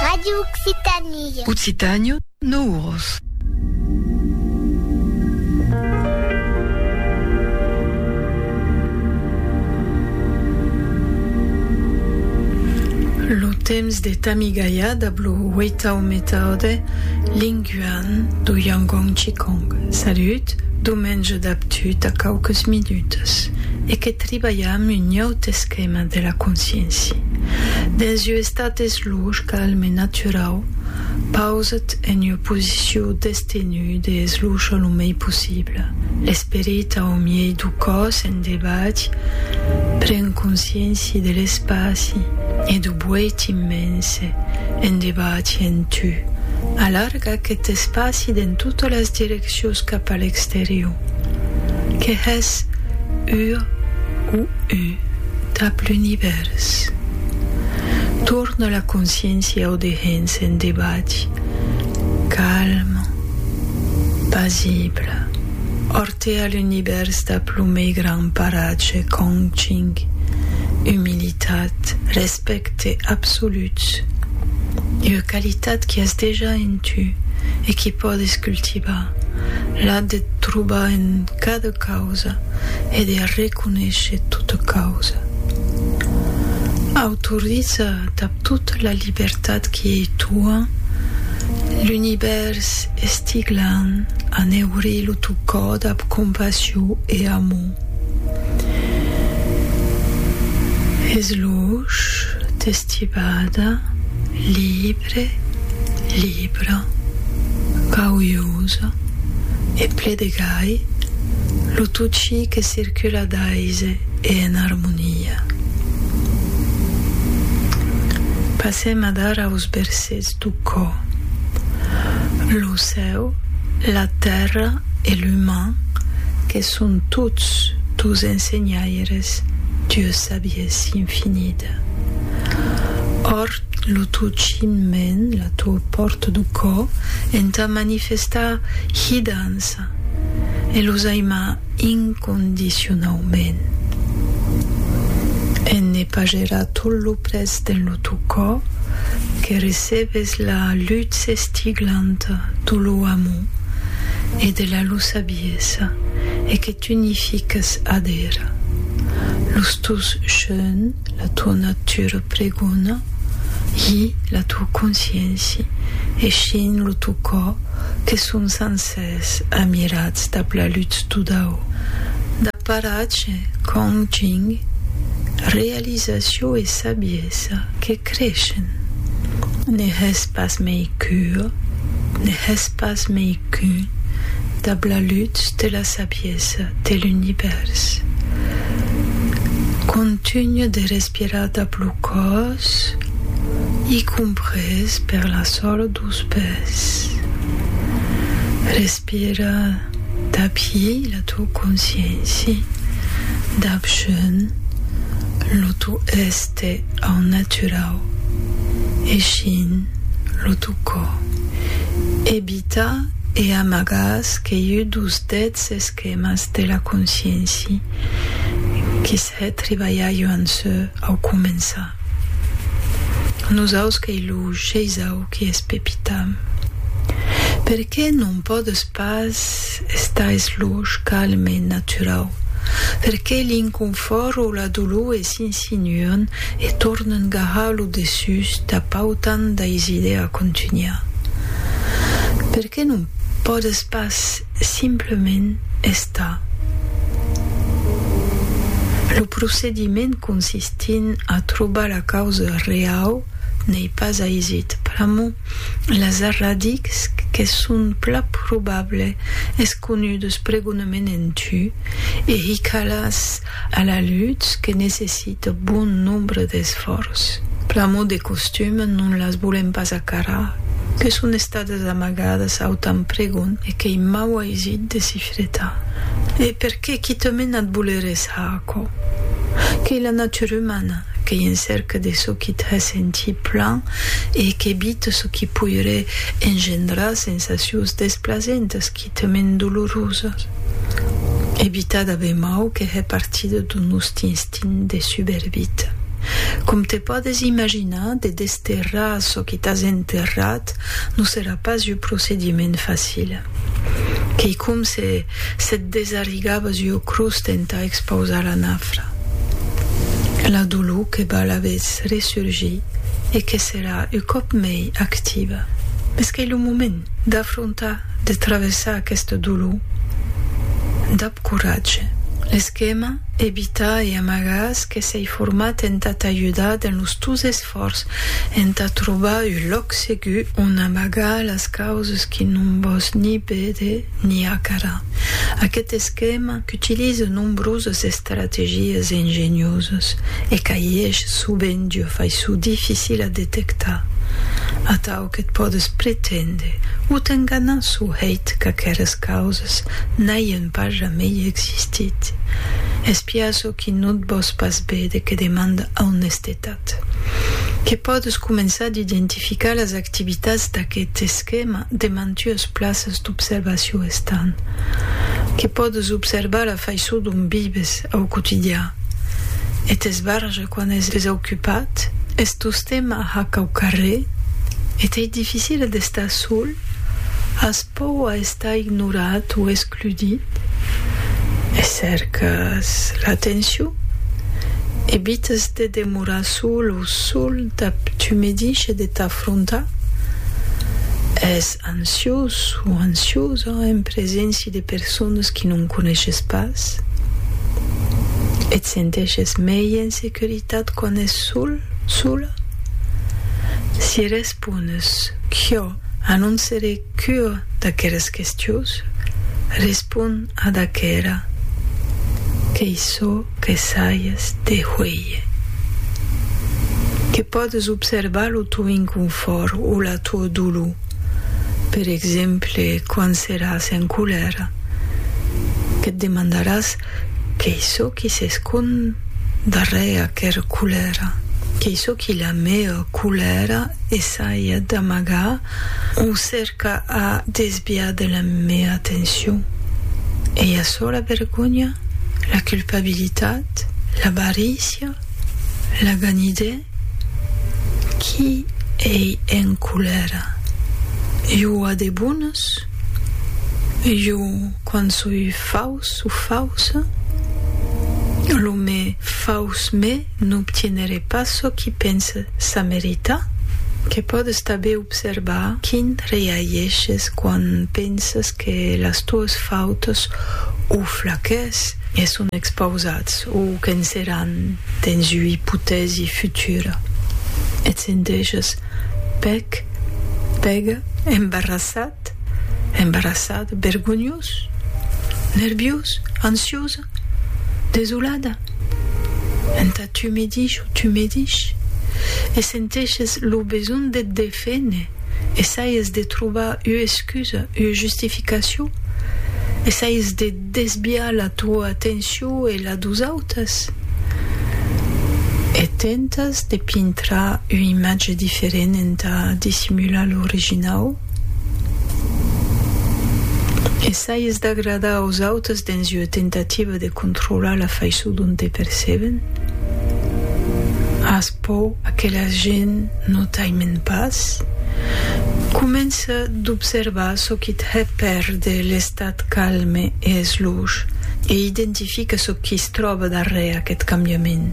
Radio Occitanie. Occitània, no uros. Lo temps de Tamigaia dab lo huetau metaude linguan do Yangon Chikong. Salut, domenge dab tut a quauques minutes e que tribalham un ieu tès Tèma de la consciéncia dens ua estat esluch, calm e naturau, pausat en ua posiciu d'estenut e eslucha lo mei possible. L'esperit au miei du còs en debat pren consciéncia de l'espaci e du boet immense en debat en tu. Alarga aquest espaci dens totas las direccions. Siós cap a l'exterior. Que hè's ur o u dab l'univèrs. Torna la consciéncia o de hens en debat, calm, pasible, ortea l'univèrs dab lo mei gran paratge, Kong Ching, humilitat, respecte. Respècte absolut. Ua qualitat qui as dejà en tu e qui pòdes cultivar, la de trobar en cada causa e de reconéisher tota causa. Autoriza dab tota la libertat qui ei tua, l'univèrs estiglant a neurir lo teu còr dab compassion e amor. Es luch d'estibada libre, libra, gauiosa e ple de gai, lo tot chi que circula d'aise e en armonia. Passèm adar aus bersets d'o cò. Lo cèu, la tèrra e l'uman que Son tots dos ensenhaires d'ua sabiesa infinida. Òrt lo tò chinhment, la tò pòrta do cò, entà manifestar hidança e los aimar incondicionaument. En ne pagerar tot lo près dens lo tò cò, que recebes la lutz estiglanta do lo amor e de la lo sabier. Bellesa e que t'unifiques ad era. Los tòus jeun, la tua natura pregona, i la tua consciéncia, eixint lo tau cò, que son sancers amirats dab la lutz todau. Dab paratge, Kong Jing, realizacion e sabiesa que Crechen. Ne hè's pas mei qu'ua, ne hè's pas mei qu'un dab la lutz de la sabiesa de l'univèrs. Contunha de respirar dab lo còs, i comprés per la sola dos pès. Respira dab hi la to consciéncia, dab jeun lo to èster. Au naturau, eishin lo tu cò. Ebita e amagas qu'eiu dos dets esquemas de la conscienci quis hè tribalhaiu an sò au començar. Nosaus qu'ei lo sheisau qui es pepitam. Per qué non pòdes pas estar es loch calme e naturau? Per qué l'inconfòrt o la dolor es Continuan e tornan garrar lo dessús tà pautant dais idèa contunhar. Per qué non pòdes pas simplament estar? Lo procediment consistint a trobar la causa reau n'ei pas aisit, pr'amor las arradics que son pla probable es conudes pregonament en tu e hicalàs A la lutz que necessita bon nombre d'esfòrç. Pr'amor de costum non las volèm pas acarar, que son estadas amagadas au tan pregon e qu'ei mau aisit de s'i fretar. E per qué quitament a't volerés a aquò? Qu'ei la natura umana, qu'ei en cèrca de çò qui t'hè sentir plan e qu'evita çò qui poiré engendrar sensacions desplasentas, qui. Quitament dolorosa, evitada be mau que hè partida d'un nòsti instint de subervita. Com te pòdes imaginar, de desterrar çò que t'as enterrat non serà pas ua procediment facila. Qu'ei com se se't desarrigabas ua crotz entà expausar la nafra. La dolor que val a vez resurgir e que serà un còp mei activa. Mès qu'ei lo moment d'afrontar de travessar aqueste dolor dab coratge. L'esquema Evitar e amagar-s que s'ei format entà t'ajudar dens los tòus esfòrç entà trobar un lòc segur ont amagar las causas que non vòs ni véder ni acarar. Aqueth esquema qu'utilise nombrosas estrategias ingeniosas e qu'aiesh sovent ua faisson dificila a detectar, atau, Çò que pòdes pretendre o t'enganar çò hèit qu'aqueras causas n'aian pas jamei existit. Espiar çò qui no't vòs pas vede que demanda aunestetat. Que pòdes començar d'identificar las activitats d'aqueth esquèma de mantuas plaças d'observacion estant. Que pòdes observar la faiçon dont vives au quotidian. Eth esbarge Quan es desaucupat, es tostemp a hac au carrèr, e t'ei dificile d'estar sol, as pòur a estar ignorat o excludit, e cèrcas l'atencion, evites de demorar sol o sol, t'abtumedishes de t'afrontar, es. Ansiós o ansiosa en preséncia de personas que non coneishes pas? Et senteishes mei en securitat quan es sol, sola? Si respones qu'iò a non seré qu'ua d'aqueras questiós, respon ad aquera, Qu'ei sò. Que saies de huélher. Que pòdes observar lo teu inconfòrt o la teua dolor, per exemple, quand seràs en colèra. Que te demandaràs qu'ei çò qui s'escond darrèr aquera colèra. Qu'ei çò qui la mèa colèra essaia d'amagar. O cèrca a desviar de la mea atencion. Ei açò la vergonha? La culpabilitat? L'avarícia? La ganidè? Qui ei en colèra? Jo a de bones? Jo quand soi faus o fausa? Lo me faus me N'obtienere pas çò qui pense ça merita, que pòdes tanben observar quin reaishes quan pensas que las tuas fautas o flaquès e son expausats o qu'en seràn dens ua ipotèsi futura. Et senteges pèc, pèga, embarrassat? Embarassat. Embarassat, bergonhós, nerviós, ansiosa, desolada. Entà tu me dich o tu me dich e senteshes lo besonh de t deféner, essaies de trobar ua excusa, ua justificacion, essaies de desviar la toa atencion e la dos autas e tentas de pintrar ua imatge diferent entà dissimular l'originau. Essaies d'agradar aus autes dens ua tentativa de controlar la faiçon dont te perceben? As paur qu'aquela gent no t'aimen pas? Comença d'observar çò qui te hèt pèrder l'estat calme e esloge e identifica çò qui's tròba darrèr aquest cambiament.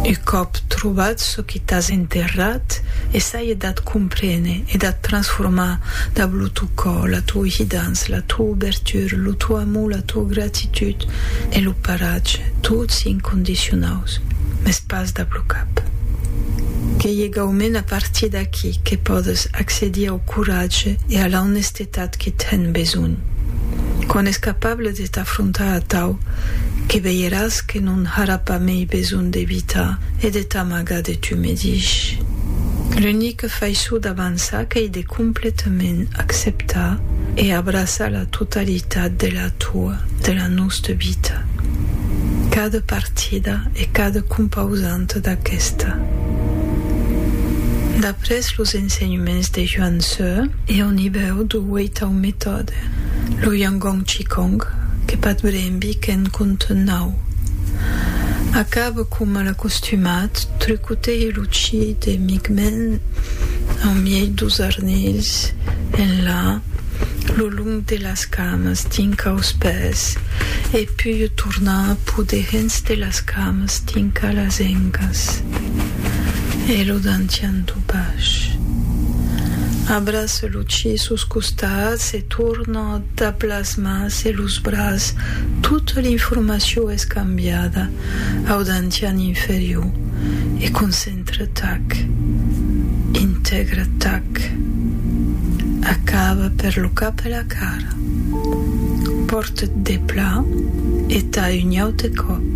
Un còp trobat çò e t'as enterrat e saie d'ath comprene e d'ath transformar dab lo tò cò, la tò hidança, la tò obertura, lo tò amor, la tò gratitud e lo paratge, tots incondicionaus, mès pas dab lo cap. Qu'ei egaument a partir d'aquí que pòdes accedir au coratge e a la honestetat, Tà qui ten besonh. Quan es capable de t'afrontar atau, que veiràs que non harà pas mei besonh d'evitar e de t'amagar de tu medich. L'unique faiçon d'avançar qu'ei de completament acceptar e abraçar la totalitat de la toa, de la nosta vita. Cada partida e cada compausanta d'aquesta. Pres los ensenhements de Yuan Tze e au nivèu du Wei Tao Methode, lo Yangon Qigong, que Pat Bremby qu'en compte nau. Acab coma l'acostumat, trucotèi lo Qi de mic men au miei dus arnilhs en la, lo long de las camas, dinc aus pès, e pui tornar pudehens de las camas dinc a las engas. E lo dantian du bach. Abraça lo chi sus costats e torna dab las mans e los bras, tota l'informacion es cambiada au dantian inferior e concentra tac, integra tac, acaba per lo cap e la cara. Pòrtet depla e tai un aute còp.